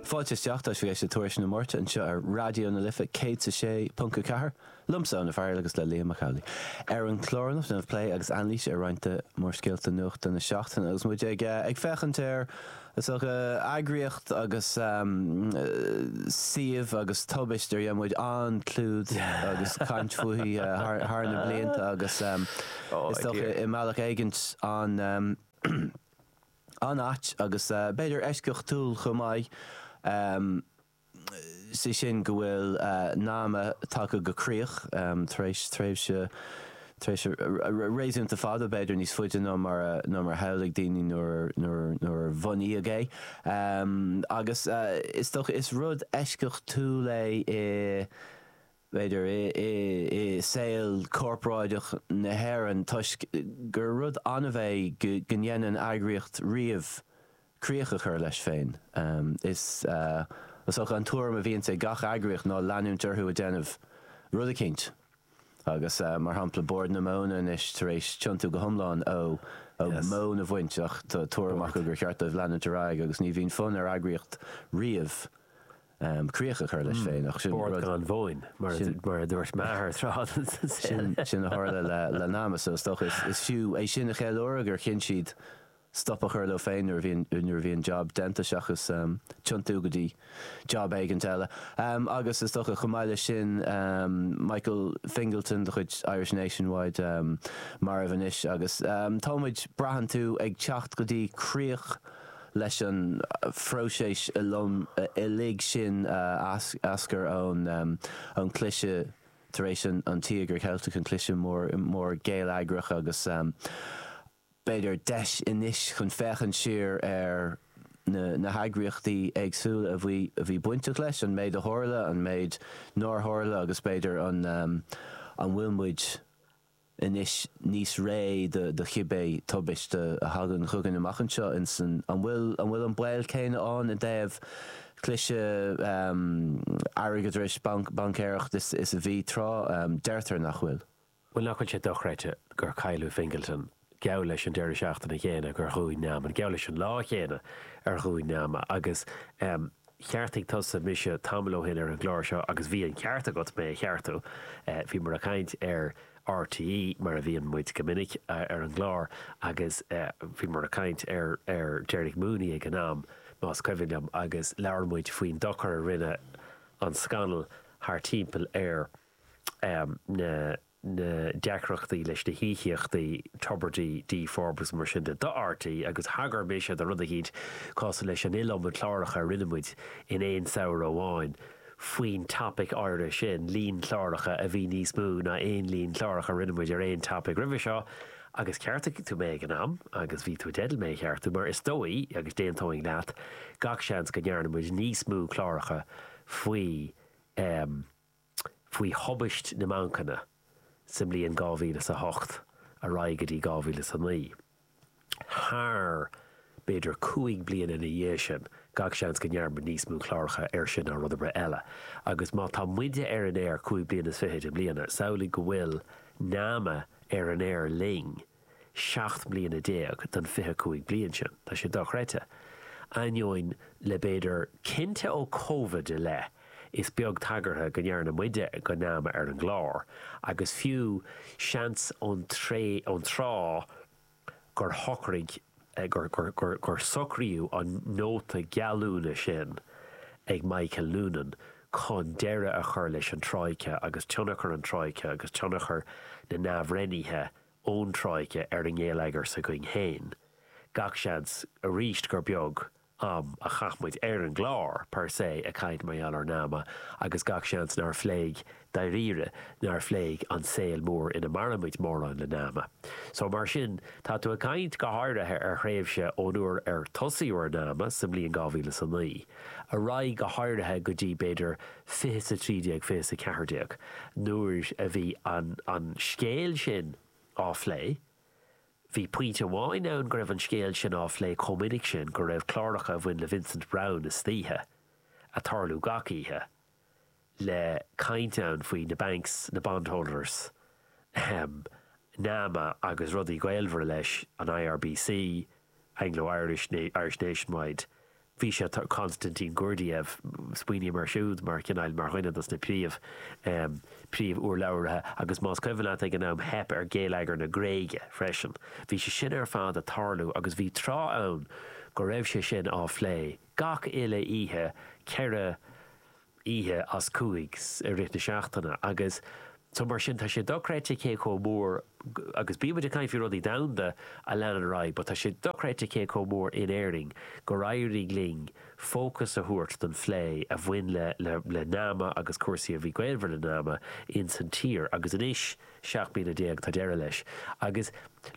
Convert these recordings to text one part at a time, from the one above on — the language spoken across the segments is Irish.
Fáilte isteach, tá sibh ag éisteacht le Tuairisc na Máirte anseo ar Raidió na Life 106.4, liomsa, Eoin Ó Fearghail agus le Liam Mac Amhlaigh. Ar an chlár anocht déanfaimid plé agus anailís ar roinnt de mhórscéalta nuachta na seachtaine agus muid ag ag féachaint ar is dócha eagraíocht agus suíomh agus tubaist ar dhein muid an-chlúdach agus caint fúithi thar na blianta agus is dócha i mbealach éigint an an-ait agus b'fhéidir eisceachtúil chomh maith, sé sin go bhfuil NAMA tagtha go críoch tar éis tréimhse tréimhse réasúnta fada, b'fhéidir níos faide ná mar a shamhlaigh daoine nuair a bunaíodh é. Agus is dócha is rud eisceachtúil é i. b'fhéidir, i saol corporáideach na hÉireann toisc gur rud annamh é go ndéanann eagraíocht riamh críoch a chur leis féin. Is dócha an tuairim a bhíonn ag gach eagraíocht ná leanúint orthu ag déanamh rud eicínt agus, mar shampla, Bord na Móna anois tar éis tiontú go hiomlán ó mhóin a bhaint ach tá tuairim acu gur cheart dóibh leanúint ar aghaidh agus ní bhíonn fonn ar eagraíocht riamh críoch a chur leis féin. Ach sin rud. Bord gan mhóin, mar a dúirt m'athair tráth. Sin a tharla le NAMA so is dócha. Is fiú é sin a cheiliúradh, gur chinn siad stop a chur leo féin nuair a bhí an jab déanta seachas tiontú go dtí jab éigin eile. Agus, is dócha, chomh maith leis sin, Michael Fingleton de chuid Irish Nationwide marbh anois agus tá muid, braitheann tú, ag teacht go dtí críoch. leis an phróiseas uilig sin a eascair ón gcliseadh tar éis an Tíogair Cheiltigh, an cliseadh mór geilleagrach agus, b'fhéidir, deis anois chun féachaint siar ar na heagraíochtaí éagsúla a bhí bainteach leis, an méid a tharla, an méid nár tharla agus, b'fhéidir, an bhfuil muid. anois níos réidhe do chibé tubaiste a thagann chugainn amach anseo. Insan An bhfuil an bhfuil an baol céanna ann i dtaobh cliseadh airgeadrais, baincéireacht is is a bhí tráth? Deirtear nach bhfuil. Bhuel, nach bhfuil sé dochreidte gur cailleadh Fingleton, geall leis an deireadh seachtaine céanna gur dhún NAMA, geall leis an lá céanna ar dhún NAMA agus, em, Cheartaigh tusa mise tamall ó shin ar an gclár seo agus bhí an ceart agat mé a cheartú. Bhíomar ag caint ar RTÉ, mar a bhíonn muid go minic, ar an gclár agus bhíomar ag caint ar Derek Mooney ag an am, más cuimhin liom, agus labhair muid faoin dochar a rinne an scannal thart timpeall ar na na deacrachtaí leis na híocaíochtaí Tubridy, Dee Forbes, mar sin de, do RTÉ agus thagair mise go rud eicínt cosúil leis an iliomad cláracha a rinne muid in aon samhradh amháin faoin topic áirithe sin, líon cláracha a bhí níos mó ná aon líon clárach a rinne muid ar aon topic roimhe seo agus cheartaigh tú mé ag an am agus bhí tú i dteideal mé a cheartú mar is dóigh, agus d'aontóinn leat, gach seans go ndearna muid níos mó cláracha faoi faoi thubaist na mbancanna sa mbliain dhá mhíle is a hocht ar aghaidh go dtí dhá mhíle is a naoi. Thar, b'fhéidir, cúig bliana ina dhiaidh sin, gach seans go ndearnadh níos mó cláracha air sin ná rud ar bith eile. Agus má tá muide ar an aer cúig bliana is fichid i mbliana, samhlaigh go bhfuil Nama ar an aer linn, seacht mbliana déag den fiche cúig bliain sin. Tá sé dochreidte. Ainneoin, le b'fhéidir cinnte ó Covid i leith, is beag tagartha go ndearna muide do Nama ar an gclár, agus fiú, seans ón tré, ón tráth gur shocraigh, gur, gur, gur, gur socraíodh an nóta geallúna sin ag Michael Noonan chun deireadh a chur leis an Troika agus tionchar an Troika agus tionchar na n-athbhreithnithe a ón Troika ar an ngeilleagar againn féin, gach seans arís gur beag am a chaith muid ar an gclár per se ag caint mar gheall ar Nama agus gach seans nár phléigh dáiríre, nár phléigh an saol mór ina mairimid mórán le Nama. So mar sin, tá tú ag caint go háirithe ar thréimhse ón uair ar tosaíodh ar Nama sa mbliain 2009 ar aghaidh go háirithe go dtí b'fhéidir fiche is a trí déag, fiche is a ceathair déag, nuair a bhí an scéal sin á phlé, bhí pointe amháin ann go raibh an scéal sin á phlé chomh minic sin go raibh cláracha a bhain le Vincent Browne istoíche, ag tarlú gach oíche, le caint ann faoi na banks, na bondholders, ahem, Nama agus rudaí gaolmhara leis, an IRBC, Anglo Irish, Irish Nationwide, Bhí sé, á, Konstantin Gurdjiev, smaoiním air siúd mar chineál, mar dhuine dos na príomh, príomh úrlabhraithe agus más cuimhin leat ag an am theip ar geilleagar na Gréige freisin. Bhí sé sin ar fad a' tarlú agus bhí tráth ann go raibh sé sin á phlé gach uile oíche ceithre, oíche as cúig i rith na seachtaine agus so mar sin tá sé dochreidte cé chomh mór agus bíonn muid ag caint faoi rudaí domhanda a leanann ar aghaidh but tá sé dochreidte cé chomh mór in Éirinn gur éirigh linn fócas a thabhairt don phlé a bhain le le le Nama agus cúrsaí a bhí gaolmhar le Nama in san tír agus anois 17 bliana tá deireadh leis. Agus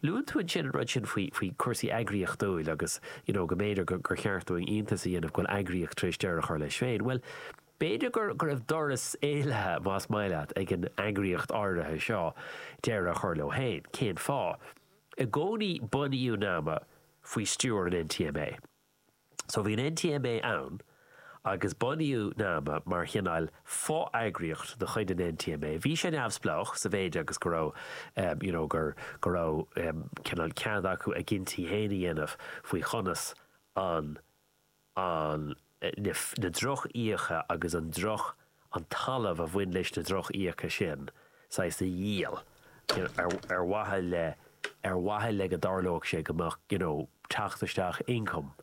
luann tú ansin an rud sin faoi chúrsaí eagraíochtúla agus you know go mb'fhéidir gur cheart dúinn iontas a dhéanamh go bhfuil eagraíocht tar éis deireadh a chur leis féin. Bhuel, b'fhéidir go raibh doras éalaithe, más maith leat, ag an eagraíocht áirithe seo deireadh a chur leo féin. Cén fáth? I gcónaí bunaíodh nama faoi stiúir an NTMA. So bhí an NTMA ann agus bunaíodh nama mar chineáil fo-eagraíocht de chuid an NTMA. Bhí sé neamhspleách sa mhéid agus go raibh, you know, gur, go raibh, um, cineál cead acu a gcinntí fhéin a dhéanamh faoi chonas an, an, na, na droch-iasachtaí agus an droch, an talamh a bhain leis na droch-fhiacha sin, saghas a dhíol, you know, ar, ar mhaithe le, ar mhaithe le go dtarlódh sé go mbeadh, you know, teacht isteach, income,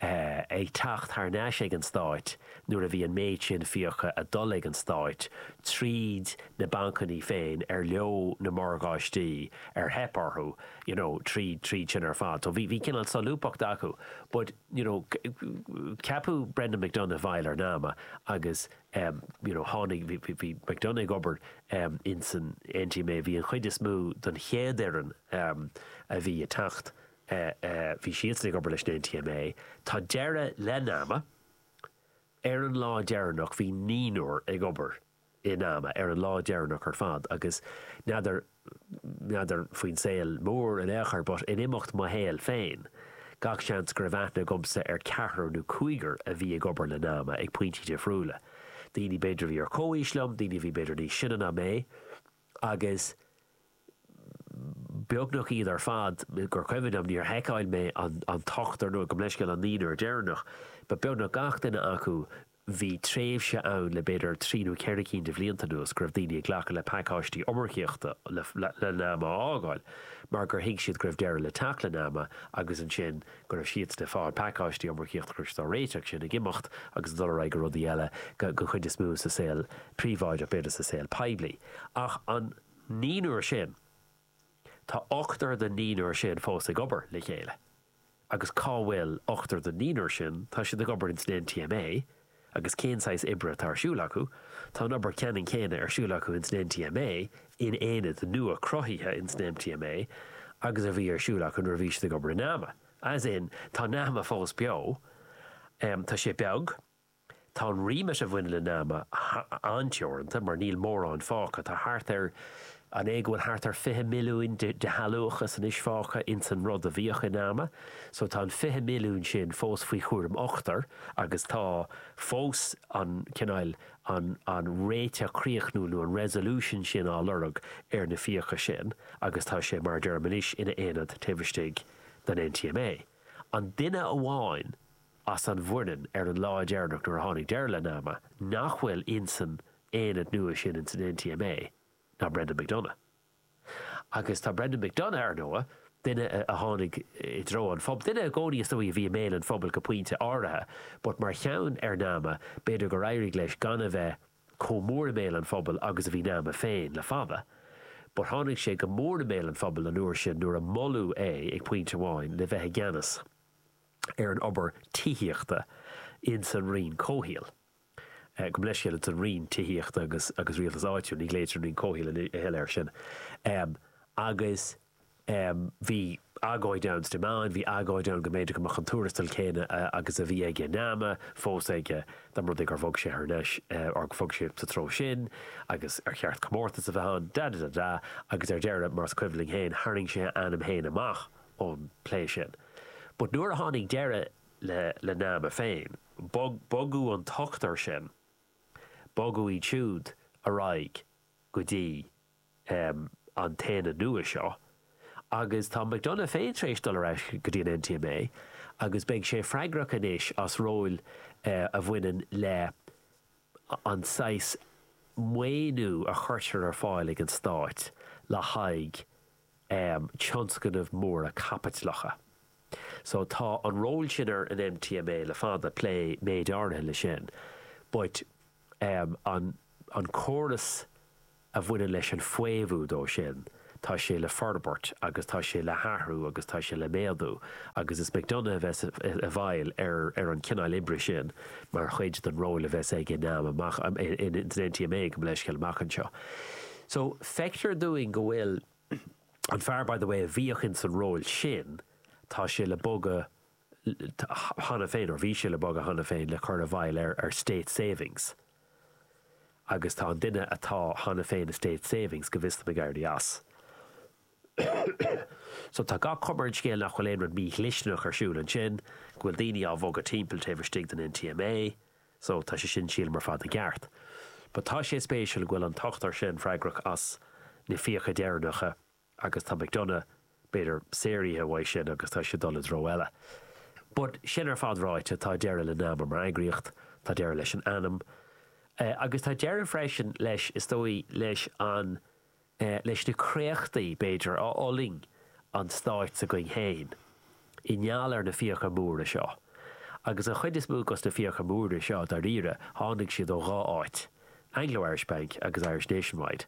eh, ag teacht thar n-ais ag an Stáit nuair a bhí an méid sin fiacha ag dul ag an Stáit tríd na bancanna féin ar leo na morgáistí ar theip orthu, you know, tríd, tríd sin ar fad. So bhí, bhí cineál solúbthacht acu. But. you know ceapadh Brendan McDonagh i bhfeighil ar nama agus you know tháinig, bhí, bhí, bhí McDonagh ag obair in san NTMA, bhí an chuid is mó den chéad fhoireann a bhí ag teacht, bhí siadsan ag obair leis an NTMA. Tá deireadh le nama, ar an lá deireanach bhí naonúr ag obair i nama, ar an lá deireanach ar fad, agus n'fheadar, n'fheadar faoin saol mór in aon chor, but in imeacht mo shaoil féin, gach seans go raibh aithne agamsa ar ceathrar nó cúigear a bhí ag obair le nama, ag pointí difriúla. Daoine b'fhéidir a bhí ar chomhaois liom, daoine a bhí b'fhéidir níos sine ná mé, agus beagnach iad ar fad, gur cuimhin liom, níor sheiceáil mé an t-ochtar nó gabh mo leithscéal an naonúr deireanach, but beagnach gach duine acu, bhí tréimhse ann le b'fhéidir trí nó ceithre cinn de bhlianta anuas go raibh daoine ag glacadh le pacáistí iomarcaíochta le nama a fhágáil mar gur thuig siad go raibh deireadh le teacht le nama agus ansin go raibh siadsan ag fáil pacáistí iomarcaíochta go raibh siad dá réir sin ag imeacht agus ag dul ar aghaidh go rudaí eile, den chuid is mó sa saol príobháideach b'fhéidir sa saol poiblí ach an. naonúr sin, tá ochtar den naonúr sin fós ag obair le chéile. Agus cá bhfuil ochtar den naonúr sin? Tá siad ag obair ins an NTMA. Agus cén saghas oibre atá ar siúl acu? Tá an obair ceannann céanna ar siúl acu ins an NTMA, in aonad nua cruthaithe ins an NTMA, agus a bhí ar siúl acu nuair a bhí siad ag obair i NAMA. As in, tá NAMA fós beo. Tá sé beag. Tá an remit a bhaineann le nama an-teoranta mar níl mórán fágtha. Tá thart ar, an é go bhfuil thart ar 20 milliúin de shealúchas anois fágtha ins an rud a bhíodh i nama. So tá an 20 milliúin sin fós faoi chúram ochtar agus tá fós an cineál, an, an réiteach críochnúil nó an resolution sin á lorg ar na fiacha sin agus tá sé, mar a deirim anois, ina aonad taobh istigh den NTMA. An duine amháin as an bhfoireann ar an lá deireanach nuair a tháinig deireadh le nama, nach bhfuil insan aonad nua sin, insan NTMA, ná Brendan McDonagh. Agus tá Brendan McDonagh, ar ndóigh, duine a tháinig i dtreo an phobail, duine i gcónaí, is dóigh, a bhí i mbéal an phobail go pointe áirithe, but mar cheann ar nama, b'fhéidir gur éirigh leis gan a bheith chomh mór i mbéal an phobail agus a bhí nama féin le fada. But tháinig sé go mór i mbéal an phobail an uair sin nuair a moladh é, ag pointe amháin, le bheith i gceannas. ar an obair tithíochta ins an Roinn Comhshaoil, gabh mo leithscéal ins an Roinn Tithíochta agus Rialtas Áitiúil, ní ghlaoitear an Roinn Comhshaoil a thuilleadh ar sin, agus bhí agóid ann sna meáin, bhí agóid ann go mb'fhéidir go mbeadh an tuarastal céanna agus a bhí aige i nama fós aige dá mba rud é gur bhog sé thar n-ais, or gur bhog sé sa treo sin agus ar cheart comórtas a bheith ann, da-da-da-da, agus ar deireadh, mar is cuimhin linn féin, tharraing sé a ainm féin amach. ón bplé sin. But nuair a tháinig deireadh le le nama féin, bogadh an t-ochtar sin, bogadh iad siúd ar aghaidh go dtí an t-aonad nua seo agus tá McDonagh féin tar éis dul ar ais go dtí an NTMA agus beidh sé freagrach anois as ról a bhaineann le an saghas maoiniú a chuirtear ar fáil ag an Stát le haghaidh um tionscnaimh mhóra caipitleacha. So tá an ról sin ar an NTMA le fada, plé méid áirithe leis sin, but um an an córas a bhaineann leis an bhfaomhadh dó sin, tá sé le forbairt agus tá sé le hathrú agus tá sé le méadú agus is McDonagh a bheas i bhfeighil ar ar an cineál oibre sin mar chuid den ról a bheas aige i nama, san NTMA, gabh mo leithscéal, amach anseo. So, feictear dúinn go bhfuil an fear, by the way, a bhíodh ins an ról sin, tá sé le bogadh cheana féin, or bhí sé le bogadh cheana féin, le cur i bhfeighil ar, ar State Savings. Agus tá an duine atá cheana féin i State Savings, go bhfios do na Gardaí, as. So, tá gach cuma ar an scéal nach bhfuil aon rud mí-dhlisteanach ar siúl ansin, go bhfuil daoine á bhogadh timpeall taobh istigh den NTMA, So, tá sé sin, sílim, ar fad i gceart. But tá sé spéisiúil go bhfuil an t-ochtar sin freagrach as na fiacha deireanacha agus tá McDonagh, b'fhéidir, saortha uaidh sin agus tá sé ag dul i dtreo eile. But sin ar fad ráite, tá deireadh le Nama mar eagraíocht, tá deireadh leis an ainm. Agus tá deireadh freisin leis, is dóigh, leis an. leis na créachtaí, b'fhéidir, a fhulaing an Stát s'againn féin i ngeall ar na fiacha móra seo. Agus an chuid is mó dos na fiacha móra seo, dáiríre, tháinig siad ó dhá áit, Anglo Irish Bank agus Irish Nationwide.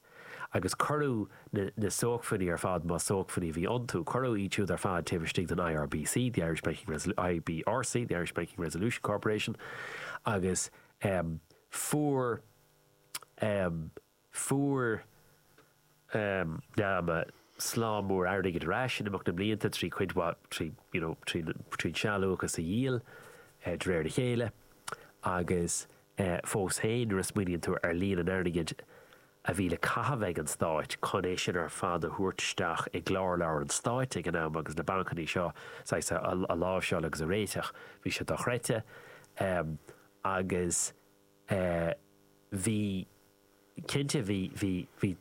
Agus cuireadh na na sócmhainní ar fad, más sócmhainní a bhí iontu, cuireadh iad siúd ar fad taobh istigh den IRBC, the Irish Banking, IBRC, the Irish Banking Resolution Corporation, agus fuair Fuair Nama slám mór airgid ar ais in imeacht na mblianta trí cuid mhaith, trí, you know, trí, trí an sealúchas a dhíol de réir a chéile agus fós féin nuair a smaoiníonn tú ar líon an airgid a bhí le caitheamh ag an Stát chun é sin ar fad a thabhairt isteach i gclár leabhar an Stáit ag an am agus na bancannaí seo, saghas, a láimhseáil agus a réiteach, bhí sé dochreidte agus Eh, bhí, cinnte bhí, bhí, bhí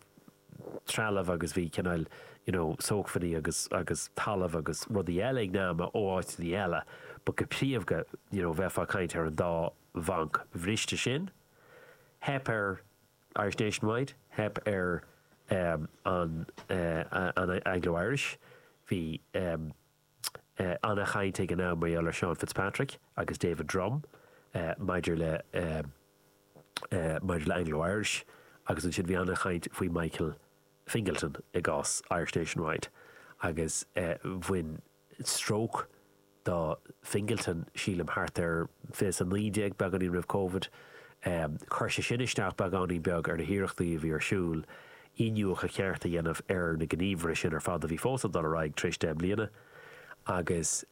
trealamh agus bhí cineál, you know, sócmhainní agus, agus talamh agus rudaí eile ag Nama ó áiteanna eile but go príomha, you know, bheifeá ag caint ar an dá bhanc bhriste sin. Theip ar Irish Nationwide, theip ar, em, an, eh, an Anglo-Irish, bhí, em, Ana-chaint ag an am mar gheall ar Seán Fitzpatrick agus David Drumm maidir le maidir le Anglo Irish agus ansin bhí ana-chaint faoi Michael Fingleton i gcás Irish Nationwide agus bhain stróc do Fingleton sílim thart ar fiche a 19 beagáinín roimh Covid. Chuir sé sin isteach beagáinín beag ar na hiarrachtaí a bhí ar siúl iniúchadh ceart a dhéanamh ar na gníomhartha sin ar fad a bhí fós ag dul ar aghaidh tar éis deich mbliana agus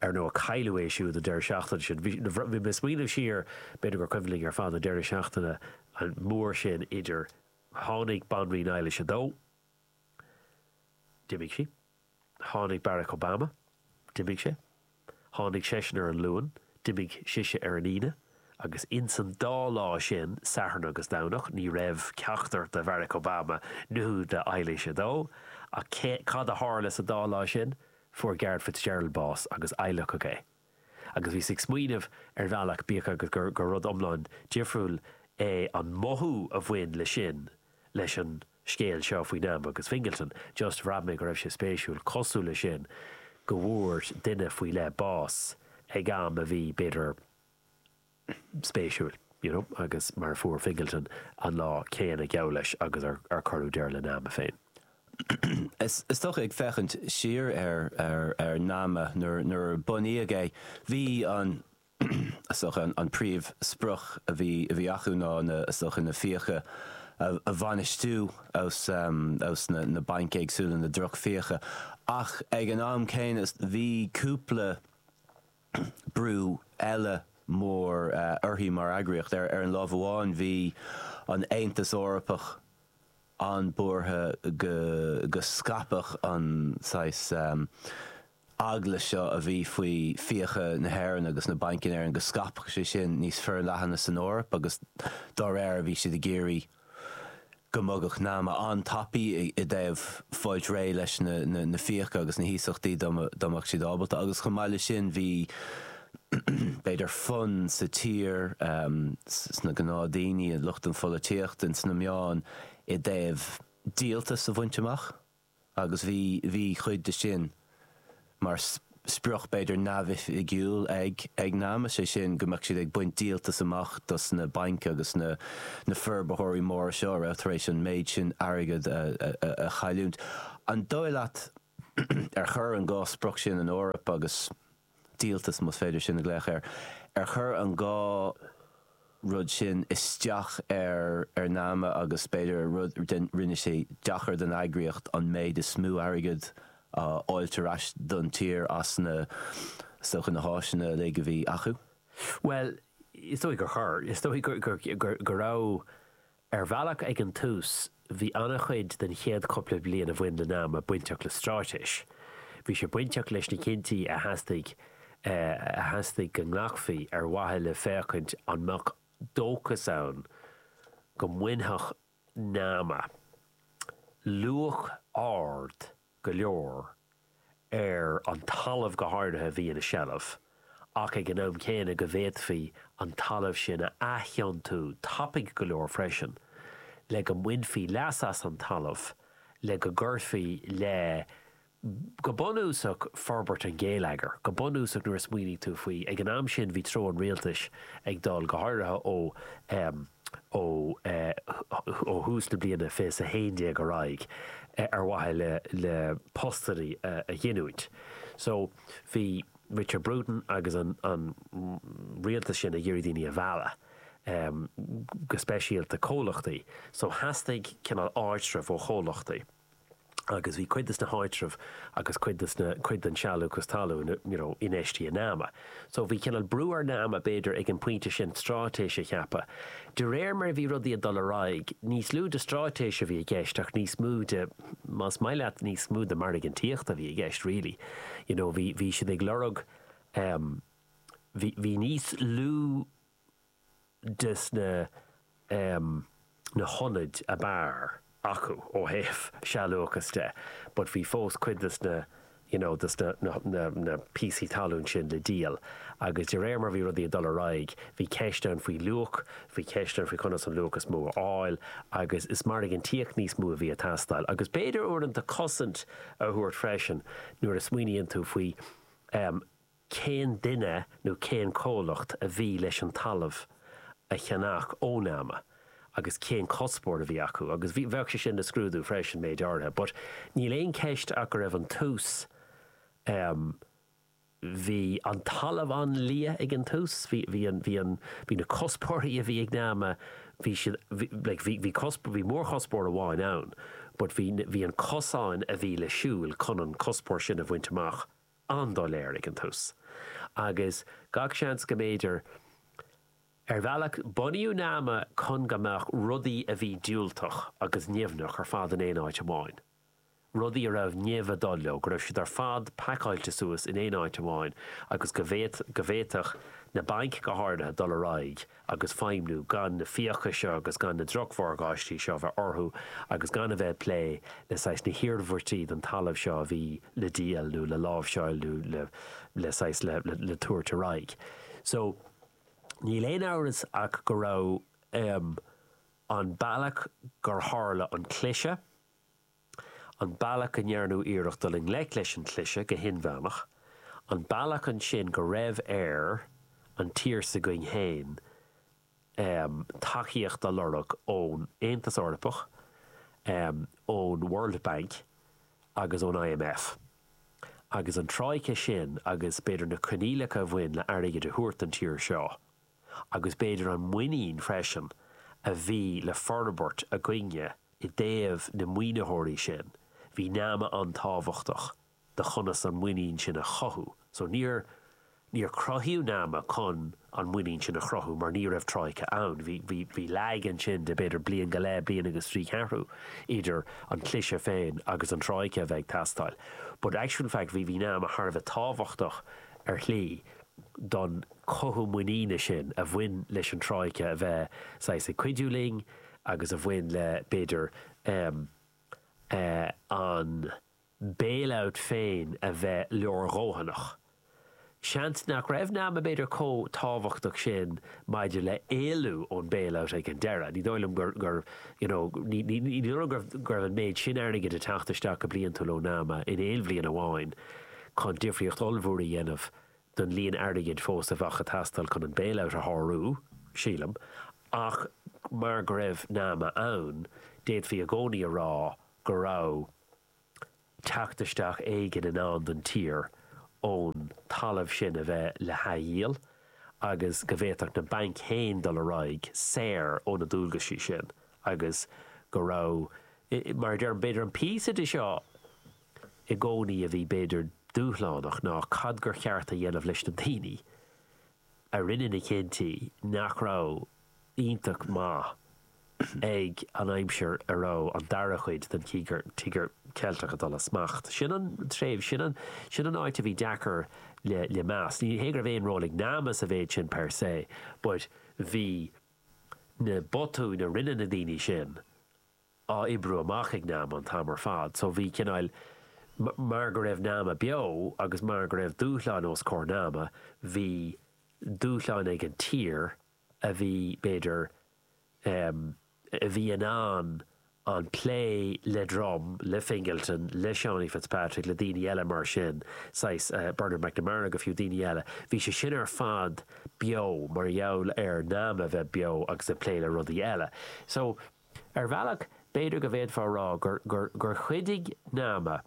ar ndóigh cailleadh é siúd an deireadh seachtaine sin. Bhí mé ag smaoineamh siar, b'fhéidir gur cuimhin linn ar fad an deireadh seachtaine mór sin idir, tháinig Banríon Eilís a Dó, d'imigh sí, Tháinig Barack Obama, d'imigh sé, tháinig seisean ar an Luan, d'imigh sise ar an Aoine, agus ins an dá lá sin, Satharn agus Domhnach, ní raibh ceachtar de Bharack Obama nó de Eilís a Dó. Ach cad a tharla sa dá lá sin? Fuair Garret Fitzgerald bás agus adhlacadh é. agus bhíos ag smaoineamh ar bhealach, bíodh agus gur rud iomlán difriúil é an mothú a bhain le sin, leis an scéal seo faoi Nama agus Fingleton, just bhraith mé go raibh sé spéisiúil, cosúil le sin, go bhfuair duine faoi leith bás ag am a bhí, b'fhéidir, spéisiúil, you know, agus mar a fuair Fingleton an lá céanna, geall leis, agus a cuireadh deireadh le Nama féin. Is dócha, ag féachaint siar ar Nama nuair a bunaíodh é, bhí an, is dócha, an príomhsprioc a bhí acu ná, is dócha, na fiacha a bhainistiú ós na bainc éagsúla, na drochfhiacha. Ach ag an am céanna, bhí cúpla, brú eile mór uirthi mar eagraíocht. Ar an láimh amháin bhí an Aontas Eorpach an-buartha go scaipfeadh an saghas eagla seo a bhí faoi fiacha na hÉireann agus na bainc in Éirinn, go scaipfeadh sé sin níos forleathana san Eoraip agus dá réir bhí siad ag iarraidh, go mbogfadh Nama an-tapaidh i dtaobh fáilt réidh leis na fiacha agus na hiasachtaí dá mbeadh siad ábalta agus chomh maith le sin bhí b'fhéidir fonn sa tír, sna gnáthdhaoine, i lucht na polaitíochta, in sna meáin i dtaobh díoltas a bhaint amach. agus bhí, bhí cuid de sin mar sprioc b'fhéidir neamhoifigiúil ag, ag Nama, is é sin go mbeadh siad ag baint díoltas amach dos na bainc agus na, na forbarthóirí móra seo a raibh tar éis an méid sin airgead a, a, a chailliúint. An dóigh leat ar chuir an dá sprioc sin an Eoraip agus. díoltas, más féidir sin a ghlaoch air, ar chur an dhá rud sin isteach ar Nama agus b'fhéidir ar rud é a rinne sé deacair don eagraíocht an méid is mó airgead a fháilt ar ais don tír as na is dócha na háiseanna uilig a bhí acu. Bhuel, is dóigh gur chur. Is dóigh go raibh. Ar bhealach, ag an tús, bhí an-chuid den chéad chúpla bliain a bhain le Nama bainteach le straitéis. Bhí sé bainteach leis na cinntí a theastaigh a theastaigh go nglacfaí ar mhaithe le féachaint an mbeadh dóchas ann go mbainfeadh Nama luach ard go leor, ar an talamh go háirithe a bhí ina seilbh, ach ag an am céanna go bhféadfaí an talamh sin a athiontú tapaidh go leor freisin le go mbainfí leas as an talamh le go gcuirfí le, go bunúsach, forbairt an ghéilleagair. Go bunúsach, nuair a smaoiníonn tú faoi, ag an am sin bhí treo an rialtais ag dul, go háirithe ó. ó thús na bliana fiche 11 ar aghaidh ar mhaithe le postannaí a ghiniúint. So bhí Richard Bruton agus an rialtas sin ag iarraidh daoine a mhealladh, go speisialta comhlachtaí. So theastaigh cineál ardsruth ó chomhlachtaí. agus bhí cuid des na háitreamh agus cuid des na, cuid den sealúchas talún, you know, infheistithe in Nama. So bhí cineál brú ar Nama, b'fhéidir, ag an bpointe sin stráitéis a cheapadh. De réir mar a bhí rudaí ag dul ar aghaidh, níos lú de stráitéis a bhí i gceist ach níos mó de, más maith leat, níos mó de margántaíocht a bhí i gceist really. You know, bhí, bhí siad ag lorg, em, bhí, bhí níos lú. des na na hionaid ab fhearr acu ó thaobh sealúchas de but bhí fós cuid des na you know des na na na píosaí talún sin le díol agus de réir mar bhí rudaí ag dul ar aghaidh bhí ceist ann faoi luach bhí ceist ann faoi conas an luach is mó a fháil agus is margántaíocht níos mó a bhí ag teastáil agus b'fhéidir uaireanta cosaint a thabhairt freisin nuair a smaoiníonn tú faoi cén duine nó cén comhlacht a bhí leis an talamh a cheannach ó nama agus cén cuspóir a bhí acu agus bhí, bheadh sé sin le scrúdú freisin, méid áirithe. But níl aon cheist ach go raibh an tús, em, bhí an talamh an-liath ag an tús, bhí, bhí an, bhí an, bhí na cuspóirí a bhí ag nama, bhí siad, bhí, like, bhí, bhí cusp, bhí mórchuspóir amháin ann but bhí, bhí an cosán a bhí le siúl chun an cuspóir sin a bhaint amach an-doiléir ag an tús agus gach seans go mb'fhéidir Ar bhealach, bunaíodh Nama chun go mbeadh rudaí a bhí diúltach agus nimhneach ar fad in aon áit amháin. Rudaí a raibh nimh ag dul leo, go raibh siad ar fad pacáilte suas in aon áit amháin agus go bhféadfadh na bainc go háirithe dul ar aghaidh agus feidhmniú, gan na fiacha seo agus gan na drochmhorgáistí seo a bheith orthu agus gan a bheith ag plé le saghas na hiarmhairtí don talamh seo a bhí le díol nó le láimhseáil nó le le saghas le le tabhairt ar aghaidh. So níl aon amhras ach go raibh, em, an bealach gur tharla an cliseadh. an bealach go ndearnadh iarracht dul i ngleic leis an chliseadh go hinmheánach, an bealach ansin go raibh ar an tír s'againn féin tacaíocht a lorg ón Aontas Eorpach, ón World Bank agus ón IMF. Agus an troika sin agus b'fhéidir na coinníollacha a bhain le airgead a thabhairt don tír seo, agus b'fhéidir an muinín freisin a bhí le forbairt againne i dtaobh na maoinitheoirí sin, bhí nama an-tábhachtach do chonas an muinín sin a chothú. So níor, níor cruthaíodh nama chun an muinín sin a chruthú mar ní raibh Troika ann. Bhí, bhí, bhí lag ansin de b'fhéidir bliain go leith, bliain agus trí cheathrú idir an cliseadh féin agus an Troika a bheith ag teastáil. But actual fact bhí, bhí nama thar a bheith tábhachtach ar shlí. don chothú muiníne sin a bhain leis an Troika a bheith saghas ag cuidiú linn agus a bhain le, b'fhéidir, an bailout féin a bheith leordhóthanach. Seans nach raibh nama, b'fhéidir, chomh tábhachtach sin maidir le héalú ón bailout ag an deireadh. Ní dóigh liom gur, you know, ní dóigh liom go raibh an méid sin airgid ag teacht isteach go bliantúil ó nama in aon bhliain amháin. chun difríocht ollmhór a dhéanamh don líon airgid fós a bheadh ag teastáil chun an bailout a shárú, sílim, ach mar go raibh Nama ann, d'fhéadfaí i gcónaí a rá go raibh teacht isteach éigin in ann don tír ón talamh sin a bheith le hathdhíol agus go bhféadfadh na bainc féin dul ar aghaidh saor ó na dualgaisí sin agus go raibh, mar a deirim, b'fhéidir an píosa de seo. i gcónaí a bhí b'fhéidir dúshlánach ná cad gur cheart a dhéanamh leis na daoine a rinne na cinntí nach raibh iontach maith ag an aimsir a raibh an dara cuid den Tíogar Ceilteach ag dul as smacht. Sin an tréimhse, sin an, sin an áit a bhí deacair le, le meas. Ní hé go raibh aon ról ag nama sa mhéid sin per se but bhí na botúin a rinne na daoine sin, á oibriú amach ag Nama an t-am ar fad. So bhí cineáil, mar go raibh Nama beo agus mar go raibh dúshlán os comhair Nama, bhí dúshlán ag an tír a bhí, b'fhéidir, em, a bhí in ann an plé le Drumm, le Fingleton, le Seánie Fitzpatrick, le daoine eile mar sin, saghas, eh, Bernard McNamara go fiú, daoine eile, bhí sé sin ar fad beo mar gheall ar Nama bheith beo agus ag plé le rudaí eile. So. Ar bhealach, b'fhéidir go bhféadfá a rá gur gur chuidigh Nama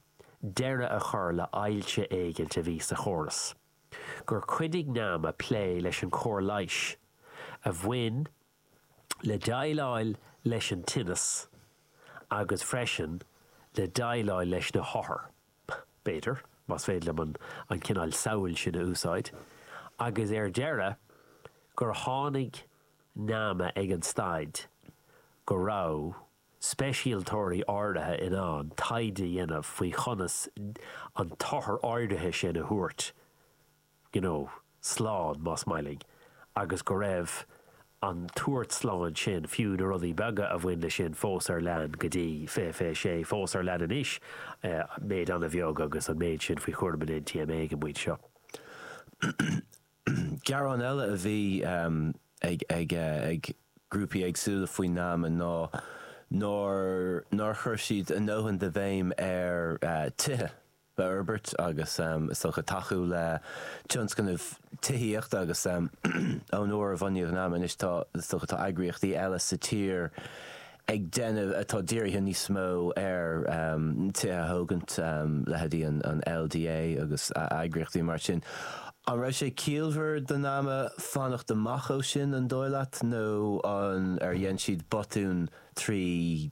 deireadh a chur le hailse éigint a bhí sa chóras, gur chuidigh Nama plé leis an chóir leighis a bhain le déileáil leis an tinneas agus freisin le déileáil leis na hothair, b'fhéidir, más féidir liom an cineál samhail sin a úsáid, agus ar deireadh, gur tháinig. nama ag an staid go raibh speisialtóirí áirithe in ann taighde a dhéanamh faoi chonas an t-othar áirithe sin a thabhairt you know slán, más maith linn, agus go raibh an tabhairt slán sin, fiú na rudaí beaga a bhain leis sin, fós ar lean go dtí, fiche fiche sé, fós ar lean anois, méid an-bheag agus an méid sin faoi chúram an NTMA ag an bpointe seo. Gearán eile a bhí ag grúpaí éagsúla faoin nama ná nár chuir siad a ndóthain de bhéim ar thithe a fhorbairt agus is dócha tacú le tionscnaimh tithíochta agus ón uair a bunaíodh nama anois is dócha tá eagraíochtaí eile sa tír ag déanamh atá dírithe níos mó ar tithe a thógaint, leithéidí an LDA agus eagraíochtaí mar sin. An raibh sé ciallmhar do nama fanacht amach ó sin, an dóigh leat, nó ar dhein siad botún trí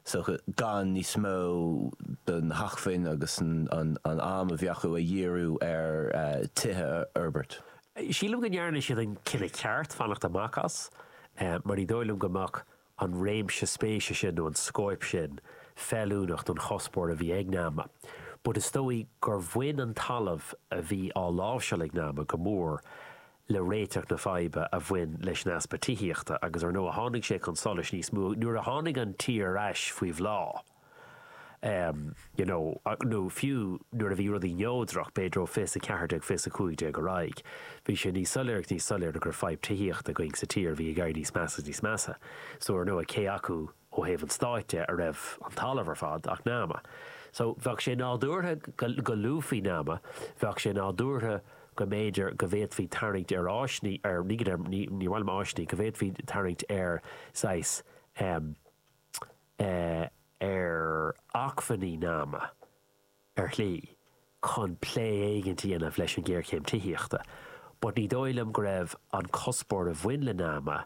is dócha gan níos mó do na hacmhainní agus an am a bhí acu a dhíriú ar tithe a fhorbairt? Sílim go ndearna siad an cinneadh ceart fanacht amach as mar ní dóigh liom go mbeadh an réimse spéise sin nó an scóip sin feiliúnach don chuspóir a bhí ag Nama. But is dóigh gur bhain an talamh a bhí á láimhseáil ag Nama go mór le réiteach na faidhbe a bhain leis an easpa tithíochta agus ar ndóigh tháinig sé chun solais níos mó nuair a tháinig an tír ar ais faoi bhláth. you know nó fiú nuair a bhí rudaí neodrach, b'fhéidir ó fiche 14, fiche 15 ar aghaidh, bhí sé níos soiléire agus níos soiléire go raibh fadhb tithíochta againn sa tír a bhí ag éirí níos measa is níos measa. So ar ndóigh, cé acu ó thaobh an stáit de a raibh an talamh ar fad ach Nama. So bheadh sé nádúrtha go luafaí Nama, bheadh sé nádúrtha go mb'fhéidir go bhféadfaí tarraingt ar áis, ní, ar, ní go deimhin, ní, níor mhaith liom áiseanna, go bhféadfaí tarraingt ar saghas, em, ar acmhainní nama, ar shlí, chun plé éicint a dhéanamh leis an ngéarchéim tithíochta, but ní dóigh liom go raibh an cuspóir a bhain le nama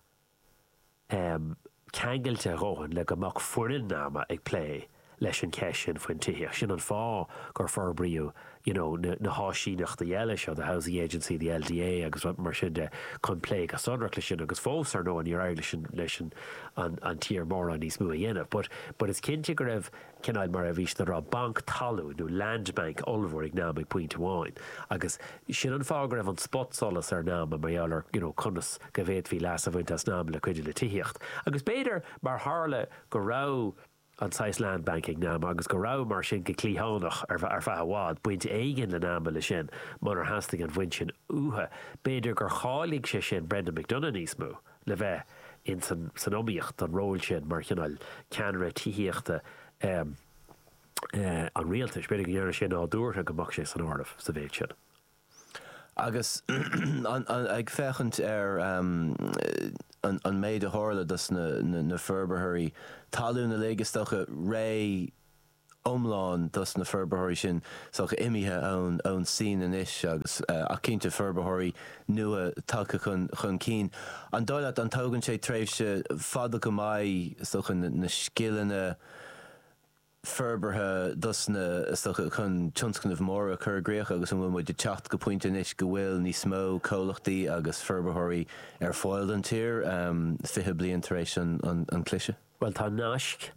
ceangailte a dhóthain le go mbeadh foireann nama ag plé leis an gceist sin faoin tithíocht. Sin an fáth gur forbraíodh you know, na, na háisíneachtaí eile seo, the Housing Agency, the LDA agus mar sin de, chun plé go sonrach leis sin agus fós, ar ndóigh, níor éirigh leis an, leis an, an, an tír mórán níos mó a dhéanamh. But, but is cinnte go raibh cineál mar a bhí siad a rá, banc talún nó land bank ollmhór ag Nama ag pointe amháin agus sin an fáth go raibh an spotsolas ar Nama mar gheall ar, you know, conas go bhféadfaí leas a bhaint as Nama le cuidiú le tithíocht. Agus b'fhéidir mar tharla go raibh. an saghas land bank ag Nama agus go raibh, mar sin, go cliathánach, ar feadh i bhfad, baint éigin le Nama le sin, munar theastaigh an bhaint sin uathu. B'fhéidir gur cháiligh sé sin Brendan McDonagh níos mó le bheith in san iomaíocht don ról sin mar chineál ceannaire tithíochta an rialtais. B'fhéidir go ndearna sé nádúrtha go mbeadh sé san áireamh sa mhéid sin. Agus ag féachaint ar an méid a tharla dos na forbarthóirí talún uilig, is dócha, réimse iomlán dos na forbarthóirí sin, is dócha, imithe ón tSín anois agus, ach cinnte, forbarthóirí nua tagtha chun cinn. An dóigh leat, an tógann sé tréimhse fada go maith, is dócha, na scileanna forbartha dos na, is dócha, chun tionscnaimh móra a chur i gcrích agus an bhfuil muid ag teacht go pointe anois go bhfuil níos mó comhlachtaí agus forbarthóirí ar fáil don tír 20 bliain tar éis an chliseadh? Bhuel, tá naisc,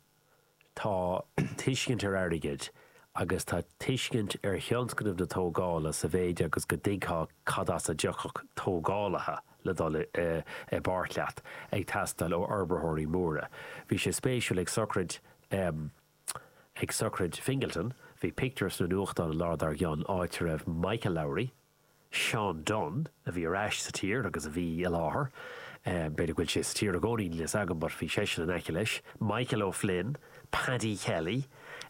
tá tuiscint ar airgead agus tá tuiscint ar thionscnamh na tógála sa mhéid agus go dtuigfeá cad as a dtiocfadh tógálaithe le dul i bpáirt leat ag teastáil ó fhorbarthóirí móra. Bhí sé spéisiúil ag sochraid em. ag sochraid Fingleton, bhí pictiúr sna nuachtáin an lá dár gcionn áit a raibh Michael Lowry, Seán Dunne, a bhí ar ais sa tír agus a bhí i láthair, em. b'fhéidir go bhfuil sé sa tír i gcónaí, níl a fhios agam but bhí seisean in aice leis, Michael O'Flynn, Paddy Kelly,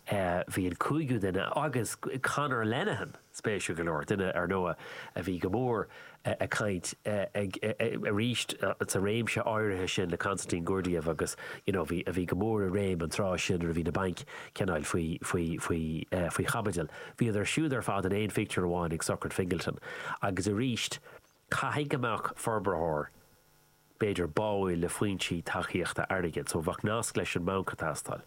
eh, bhí an cúigiú duine agus Conor Lenihan! Spéisiúil go leor, duine, ar ndóigh, a bhí go mór ag caint ag, arís, sa réimse áirithe sin le Konstantin Gurdgiev agus, you know, a bhí, a bhí go mór i réim an tráth sin nuair a bhí na bainc ag coinneáil faoi, faoi, faoi, faoi chaibidil. Bhíodar siúd ar fad in aon phictiúr amháin ag sochraid Fingleton. Agus arís, caithfidh go mbeadh forbarthóir, b'fhéidir, báúil le foinsí tacaíochta airgid. So, bheadh nasc leis an mbanc ag teastáil.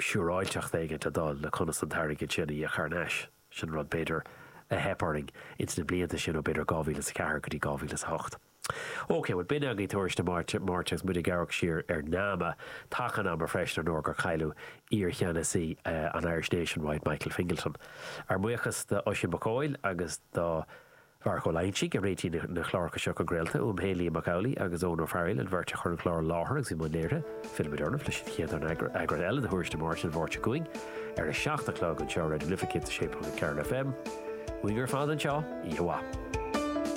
siúráilteacht éigint a dhul le conas an t-airgead sin a íoc thar n-ais. Sin rud, b'fhéidir, a theip orainn ins na blianta sin ó, b'fhéidir, 2004 go dtí 2008. OK, bhuel, b'in againn Tuairisc de Máirt, agus muid ag amharc siar ar NAMA, taca an ama freisin, ar ndóigh, gur cailleadh iar-cheannasaí an Irish Nationwide, Michael Fingleton. Ár mbuíochas d'Oisín Mac Coille agus do. Pháraic Ó Loingsigh, a réitigh na cláracha seo chun craolta. Uaim féin, Liam Mac Amhlaigh agus Eoghan Ó Fearghaíl, an bheirt a chuir an clár i láthair agus i mbun léirithe. Fillfimid oraibh leis an chéad eagrán eile de Thuairisc na Máirte an Mháirt seo chugainn ar a seacht a chlog anseo ar Raidió na Life 106.4 FM. Uainn ar fad anseo, oíche mhaith.